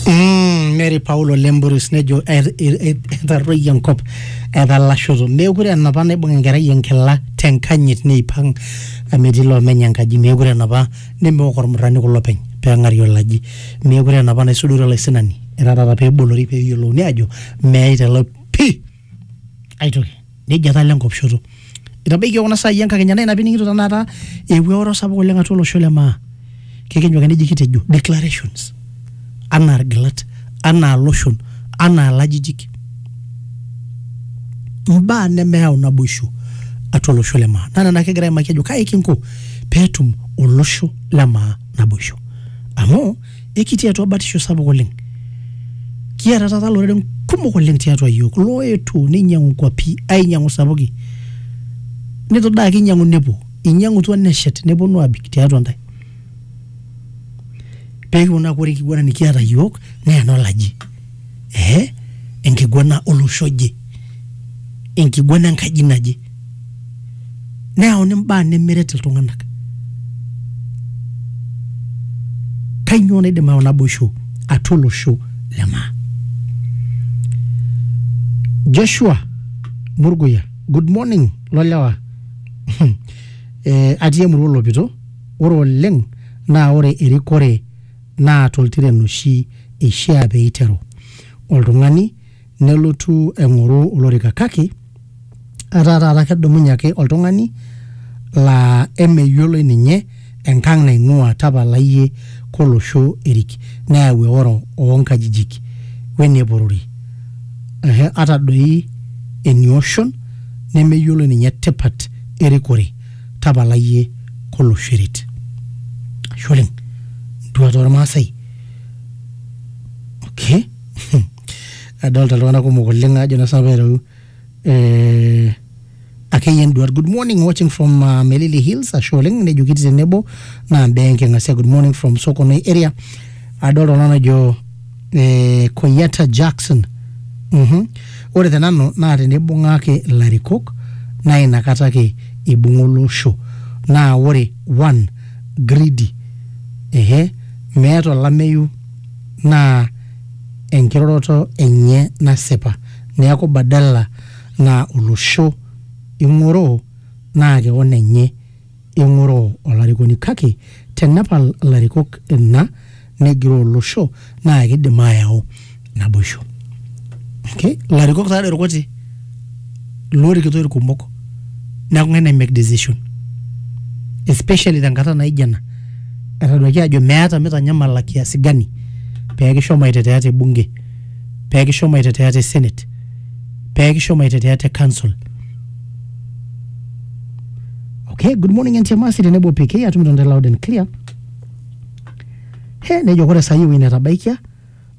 Mm, Mary Paulo Lemburus nejo "Et- et- et- etarruoyie enkop etalashoto meekure enapa naibung enkerai enkila tenkanyit neipang amu etii loomenye enkaji meekure enapa nemeok ormurrani kulo peny peeng'ari olaji meekure enapa naisudori olaisinani etaa taata peebolori peeyiolouni aajo meyaita ilo pii aitoki nejia etaa ile nkop shoto itabaikia kuna saai enkakenya naa ina pining'ito tenakata eewuo eoro sapuk oleng atua olosho le maa kekenyu ake neji kitejo declarations anaa irgilat anaa iloshon anaa ilajijik imbaa nemeyau naboisho atua olosho le maa naa nena kigira aimaki ajo kai kinko peetum olosho le maa naboisho amu ekitii atua batisho sapuk oleng kiata taata loreren kumok oleng tiatua yiok loetuo neinyiang'u nkuapi ainyiang'u sapuki netu daa ake inyiang'u nepuo inyiang'utua neshet neponu abik tiatua ntae pekiponu aaku ore enkiguana nikiata yiok naa enolaji eh, enkiguana olosho oje enkiguana enkaji naje neyauni mbaa nemeret iltung'anak kainyoo naidim ayau naboisho atua olosho le maa joshua murguya good morning lolewa eh, atii emurua olopito ore oleng naa ore erikore naa toltiren oshi eishiaa pee eiteru oltung'ani nelotu aing'oru olorika kake etaa taata kedumunye ake oltung'ani laa emeyioloi ninye enkang naing'uaa tapala iyie kolosho erik neyau eoro oo nkajijik wene porori ehe ata doi enioshon nemeyioloi ninye tipat erikore. tapala iyie kolosho eret ashe oleng ntuat ormaasai okay adolta iltung'anak kumok oleng ajo na sinanu pereru eh, akeyie nduat good morning watching from uh, melili hills ashe oleng nejo kiti tenebo naa mbaa enking'asia good morning from sokonoi area adolta oltung'ani ojo eh, Koyata Jackson Mhm. ore te nanu naa tenibung'aki ilarikok naa inakata ake ibung'a olosho naa ore one greedy ehe meeta olameyu naa enkiroroto enye nasipa neeku badala naa olosho ing'oroo naa kewon enye Eng'oroo olarikoni kake tenepal ilarikok ina negiroo olosho naa kidim ayau naboisho. Okay? Ilarikok taa doi irkuti loorikito irkumok neeku ng'ae nai make decision especially tenkata naijo ena etaduaki aajo meeta mitanyamala kiasi gani pee kishomo aitetea te bunge, pee kishomo aitetea te senate, pee kishomo aitetea te council. okay good morning ntiamasi tenebo pk atum tonde loud and clear he nejo kore saai ewueji netabaikia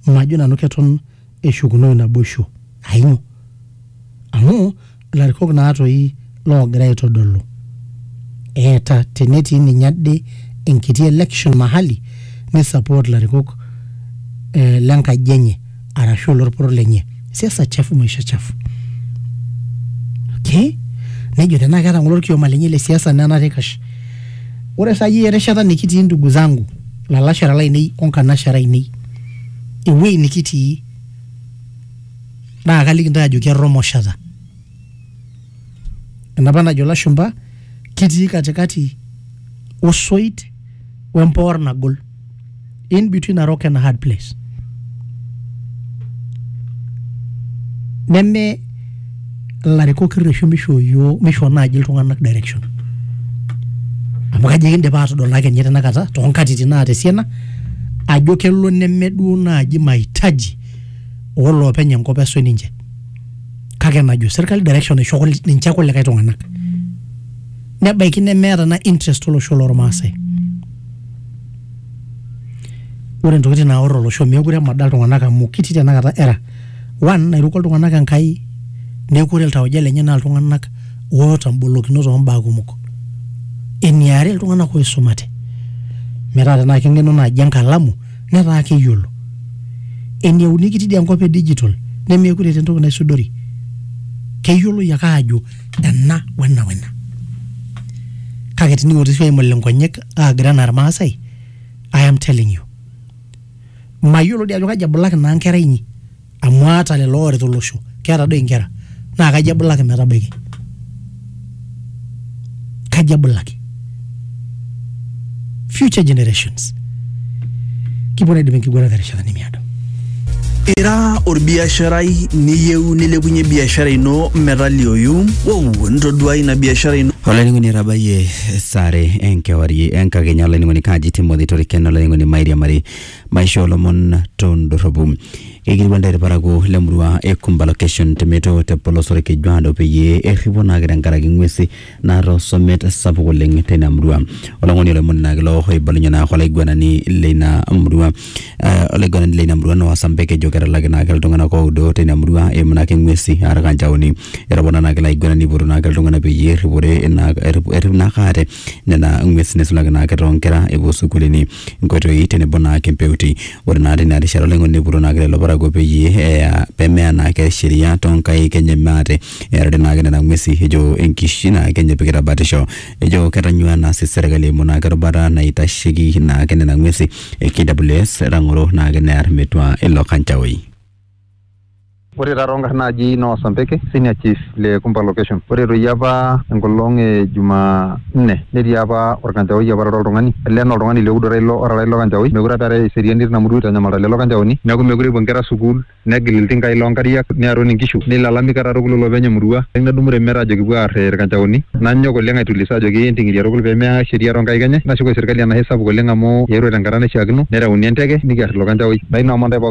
majo nanu keton eshukunoi naboisho ainyo amu ilarikok naa toi loogira aitodolu eeta tenetii ninye ade enkiti election mahali ni support ilarikok eh, lenkaji enye arashu olorporor lenye siasa chafu maisha chafu okay nejo tenaa keeta ng'ole orkioma lenye le siasa nenare eikash ore saai erishata nikitii ndugu zangu lalashera lainei onkanashera ainei ewuei nikitii naa kaliki ntae ajoki erromoshata enapa najo lashumba kitii katikati osoit wempoor nagol in between a rock and a hard place neme ilarikok irreshu misho yioo misho naaji iltung'anak direction amu kajo ekindipa aatodol ake ninye tenakata toonkatitin naata esiana ajo kelo neme duo naaji mahitaji oloopeny enkop esuj ninche kake enajo serkali direction naisho kul- ninche kulikae tung'anak nebaiki nemeeta na interest olosho lormaasai ore ntokitin naor olosho meekure emada iltung'anak amu kitii tenakata era one nairuko iltung'anak enkai neeku ore iltauja lenye naa iltung'anak oota mbolokinot ombaa kumok eniare iltung'anak oisumate metaa tenaa keng'enu naaji enkalamu netaa keyiolo. Eneuni kitii dii enkop e digital nemeekure eeta entoki naisudori. Keyioloi ake aajo ena o ena o ena. Kake tening'oru sii aimul inkonyek aagira anaa Ilmaasai, I am telling you. Mayiolo dii ajo kaji ebulaki naa nkera inyi. amu aata lelo ooret olosho keeta doi inkera naa kaji ebulaki metabaiki kaji ebulaki future generations kipuo naidip enkiguana terishata nemiado Ira orbiasharai niyieu nilepunye biashara ino metalioyu, wow, ntoduai ina biashara ino olainining'oni etabayie sare enkewarie enkakenya olainining'oni kaji timothy toriken olainining'oni mairiamari maisho olomon tondorropu keikilikuan ntae irparakuo le murua e Kumba location te Meto te polos Orkejuado peyie erripo naake tenkaraki ng'uesi naata osomet sapuk oleng teina murua olong'oni olomoni naake ilo oibalunye naake olaiguanani leina murua eh, olaiguanani leina murua naa Wasambek ejo ketalaki naake iltung'anak oudo teina murua eimu naake ng'uesi aa irkanchaoni etopona naake ilo aiguanani eipotu naake iltung'anak peyie erripore ina errip naake aate nena ng'uesi neisulaki naake toonkera epuo sukuulini nkoitoi tenebo naake mpeuti. Ore naa teina rishata olaing'oni neipotuo naake lelo parakuo peyie eya pemeya naake sheria toonkaik enye maate earare naake nena ng'uesi ejo enkishui naake enye epikita batisho. Ejo ketanyua naa sii serkali eimu naake erubata naitasheki naake nena ng'uesi e KWS etang'oro naake near metua ilo kanchaoi. Ore taa toonkarn naaji Noah Sambeke, Senior Chief le Kumba Location. Ore doi apa enkolong e Juma nne netii apa olkanchaoi apa otaara oltung'ani. Olee naa oltung'ani le Udo ilo otaara ilo kanchaoi. Meekure apa eetae eseriani tina murua eitanyamalita lelo kanchaoni. Neeku meekure epuo nkera sukuul, negil iltinkai loo nkariak, nearu nkishu, neilalami katukul olopeny e murua. Nedumu Remeta ajoki kipuo aar ilkanchaoni. Nanyok oleng aitulisa ajoki enting'iria tukul pee meya sheria too nkaik enye. Nashukoi serkali enashe sapuk oleng amu eetuo tenkata naishiakino nereuni enteke nikiar ilo kanchaoi. Naa ina omonda e pooki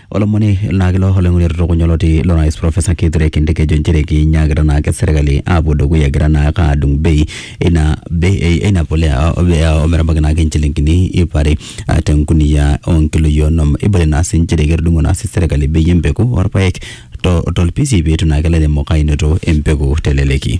Olomoni naa kilo olaing'oni otutukunya oloti lo rais Profesa Kithure Kindiki ejo nchere kinyaakita naake serkali aapuo dukuya egira naake aadung bei eina bei eina polea o metabaiki naake inchilingini ip are ah, tenkunia onkiloi onom. Eibalie naa sii nchere ketudung'o naa sii serkali bei empeku orpaek to tolpisi peitu naake ilairemok ainoto empeku teleleki.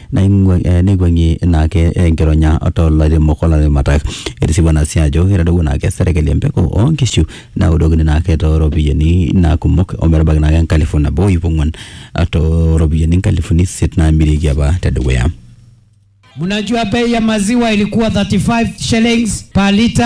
Neikuang'ie ina ake enkironya too lairemok o laramatak. Etisipu ena sii ajo etadowuo naa ake serkali empeku oo nkishu naudokini naa ake too ropiyiani naa kumok o metabaiki naa ake enkalifu nabo o iip ong'uan too ropiyiani inkalifuni isiet naamirieki apa te dukuya. Mnajua bei ya maziwa ilikuwa 35 shillings per litre.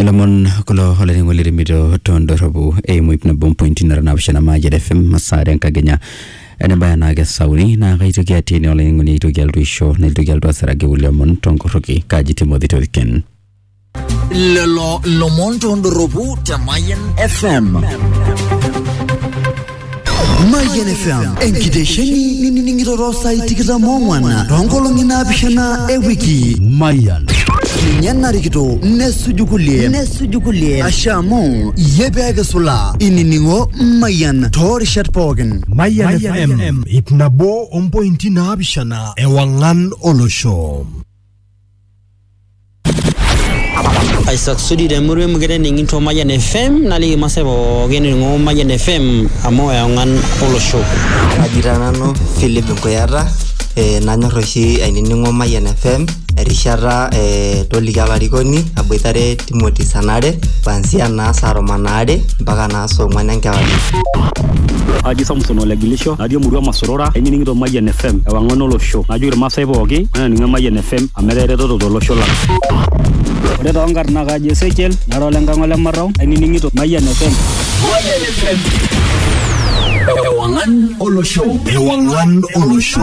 ilomon kulo olainining'oni lirimito tondorropu eimu ip nabo mpointi nara naapishana Mayian FM masaa enkakenya enebaya naa kesauni naa kaitoki atii ene olainining'oni aitoki alotu aisho naitoki alotu asiraki kulie omon tonkorroki kaji Timothy Toriken. lelo lomon tondorropu te Mayian FM. Mayian FM enkitesheni nining'ito too saai tikitam ong'wan toonkolong'i naapishana e wiki. Mayian. Ninye narikito nesuju kulie nesuju kulie asha amu iyie pee kisula inining'o Mayian too rishat pookin. Mayian FM ip nabo ompointi naapishana ewang'an olosho. aisasudi temurua emukete ening'ito Mayian FM naliki masaa pookin ening'o Mayian FM amu eong'an olosho. Kaji taa nanu Philip Nkuyata eh, nanyor oshi ainining'o Mayian FM erishata eh, toliki olarikoni aboitare Timothy saa nare kuanzia naa saa tomon aare mpaka naa saa ong'wan enkewarie. Aji Samson Olegilisho, natii emurua Masorora, ainining'ito Mayian FM, ewang'an olosho. Najoki Irmaasai pooki, mainining Mayian FM amu etaa eretoto tolosho lang. Ore too nkarn naa kaji Ezekiel, nara ole Nkang' ole Marrau, ainining'ito Mayian FM. Mayian FM. Ewang'an olosho. Ewang'an olosho.